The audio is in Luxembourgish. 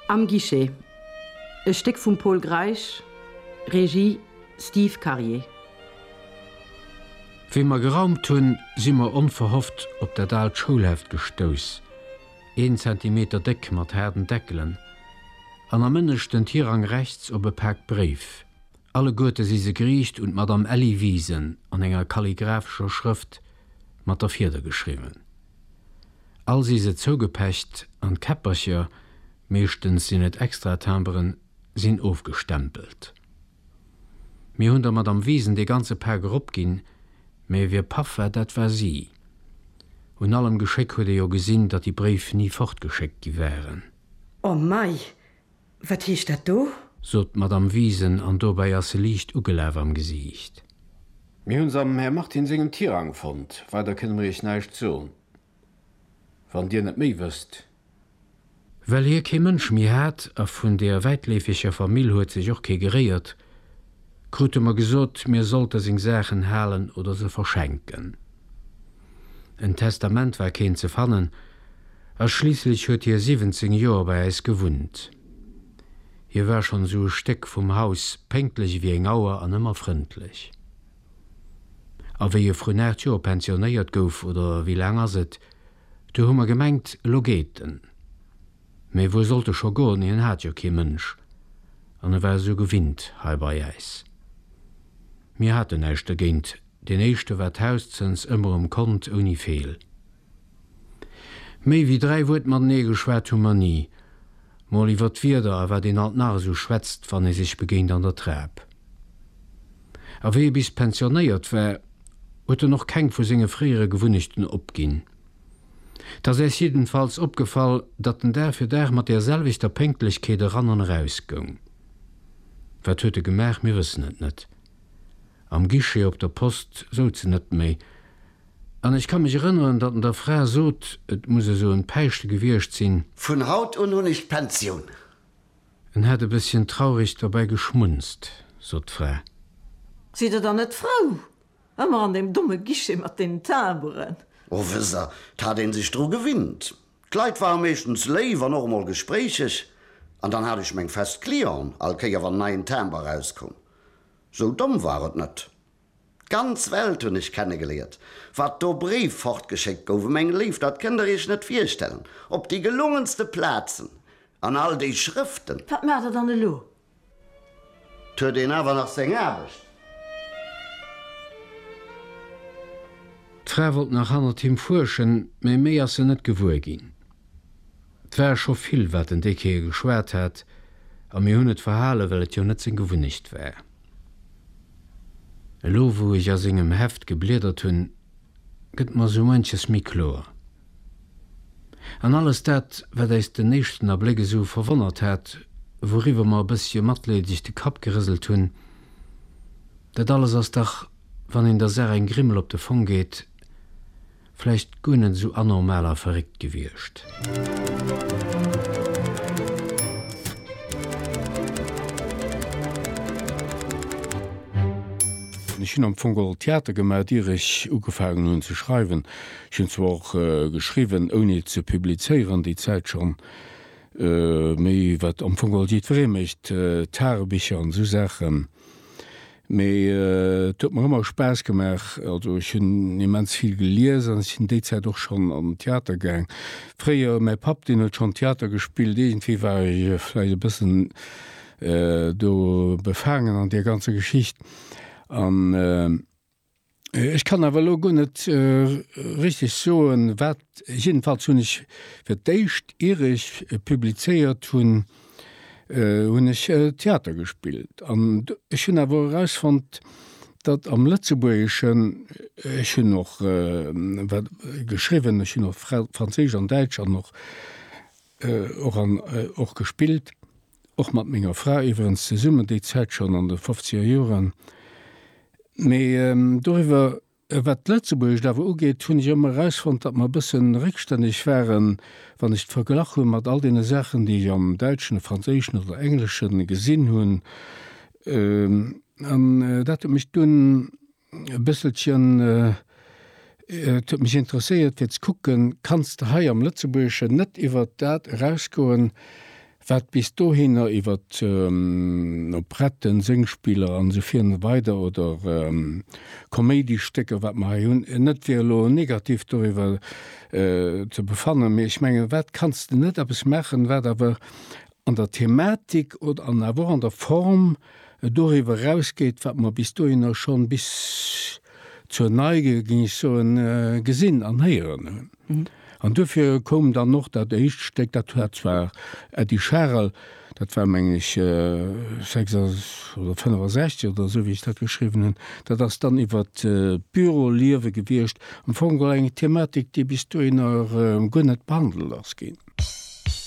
Am Guichet, e Stéck vum Pol Greisch, Regie, Steve Karier. Wéi mer geraumt hunn, si mer onverhofft op dat aalt Schoulheft gestouss, een Zentimeter déck, mat haarden Deckelen, an am ënneschten Tirang rechts op e Pak Bréif. Alleguerte si se geriicht un d'Madame Elly Wiesen, an enger kalligraphescher Schrëft mat der Fieder geschriwwen. All si se zougepecht an d'Käppercher, meeschtens sinn et Extratimberen, sinn ofgestempelt. Mir hunn der Madame Wiesen dee ganze Pak eropginn, mä wie paff war, dat war si. Un allem Geschéck huet ee jo gesinn, datt déi Bréif ni fortgeschéckt gi waren. O mei, Wat heescht dat do? Sot d'Madame Wiesen, an dobäi ass se liicht ugelaf am Gesiicht. Mir hu se am Här Martin sengem Tirang fonnt. Weider kënne mir iech näischt soen, wann dir net méi wësst. Well hie kee Mënsch méi hat, a vun der wäitleefeger Famill huet sech och kee geréiert, Krute mer gesot, mir sollte seng Saachen halen oder se verschenken. En Testament war keen ze fannen, a schliisslech huet hie 17 Joer bei äis gewunnt. Hie war schonn esou e Stéck vum Haus, pénktlech ewéi eng Auer an ëmmer frëndlech. A wéi e vrun 8 Joer pensionéiert gouf, oder wéi laang ass et, du hu mer gemengt, elo geet en. Mee wou sollt e scho goen, hien hat jo kee Mënsch an e war esou gewinnt hei bei äis. Mir haten näischt dergéint, deen éischte war d'Haus zënns ëmmer um Kont, ouni Feel. Méi wéi dräi Wuert matenee geschwat hu mer ni, mol iwwer d'Wieder a wat een alt nach esou schwätzt, wann ee sech begéint an der Trap. A wéi e bis pensionéiert war, huet en och keng vu senge fréiere Gewunnechten opginn. 't ass äis jiddenfalls opgefall, datt en Dag fir Dag mat där selwechter Pénktlechkeet eran an eraus goung. Wat huet e gemaach? Mir wëssen et net. Am Guichet op der Post souz en net méi. An ech ka mech erënneren, datt en der Fra sot, et muss esou en Päischte gewiescht sinn. Vun haut un hunn ech d'Pensioun. En hätt e bësschen traureg dobäi geschmunzt, sot d'Fra. Sidd Der dann net frou? Emmer an deem domme Guichet mat deenen Timberen. Oh wësst der, 't hat een sech dru gewinnt. D'Leit ware meeschtens léif an och emol gespréicheg. An dann hat ech meng fest Clienten, all Kéier wann en neien Timber erauskoum. Sou domm war et net. D'ganz Welt hunn ech kennegeléiert. Wat do Bréif fortgeschéckt goufe meng Léif, dat kënnt der iech net virstellen. Op déi gelungenste Plazen, an all déi Schrëften. Wat maacht der dann elo? 't huet een awer nach seng Aarbecht. D'Fra wollt nach hannert him fuerschen, mä méi ass se net gewuer ginn. 't war scho vill, wat den Déck hir geschwat hat, a mir hunn et verhalen, well et jo net seng Gewunnecht war. Elo, wou ech a sengem Heft gebliedert hunn, gëtt mer sou munches méi kloer. An alles dat, wat äis den éischten Abléck esou verwonnert hat, wouriwwer mer e bëssche matleedeg de Kapp gerëselt hunn, dat alles ass dach, wann een der Saach eng Grimmel op de Fong geet, vläicht guer net esou anormal a verréckt gewiescht. Ech hunn am Fong geholl Theater gemaach, ier ech ugefaangen hunn ze schreiwen. Ech hunn zwar och geschriwwen, ouni et ze publizéieren, déi Zäit schonn, mee wat am Fong alt jiddweree mécht, Tagebicher an esou Saachen, mee et huet mer ëmmer Spaass gemaach. Also ech hunn immens vill gelies an ech sinn déi Zäit och schonn an den Theater gaang fréier. Mäi Papp, deen huet schonn Theater gespillt, iergendwéi war ech vläicht e bëssen do befaangen an där ganzer Geschicht. Ech kann awer elo guer net richteg soen, wat. Jiddefalls hunn ech, fir d'éischt ier ech publizéiert hunn, hunn ech Theater gespillt. An ech hunn awer erausfonnt, datt am Lëtzebuergeschen, ech hunn och geschriwwen, ech hunn och franséisch an däitsch an och. Och an och gespillt, och mat menger Fra iwwerens zesummen, déi Zäit schonn an de fofziger Joren. Mee doriwwer, wat d'Lëtzebuergescht awer ugeet, hunn ech ëmmer erausfonnt, datt mer e bësse réckstänneg waren, wann ech et verglach hunn mat all deene Saachen, déi ech am Däitschen, de Franséischen oder Englesche gesinn hunn. An dat huet mech dunn E bësselchen. Et huet mech interesséiert fir ze kucken, kanns de hei am Lëtzebuergeschen net iwwert dat erausgoen, wat bis dohinner iwwert Operetten, Sëngspiller an esou vir an esou weider oder Koméidistécker, wat mer hei hunn, net fir elo negativ doriwwer ze befannen, mee ech mengen, wat kanns de net eppes maachen, wat awer an der Thematik oder an awer och an der Form doriwwer erausgeet, wat mer bis dohinner schonn, bis zur Neige, géing ech soen, gesinn an héieren hunn. An duerfir koum dann och dat éischt Stéck, dat hat zwar Eddy Scharel, dat war, mengen ech, 6 oder 65 oder esou, wéi ech dat geschriwwen hunn, dat ass dann iwwert d'Büroliewe gewiescht, am Fong geholl eng Thematik, déi bis dohinner guer net behandelt ass ginn.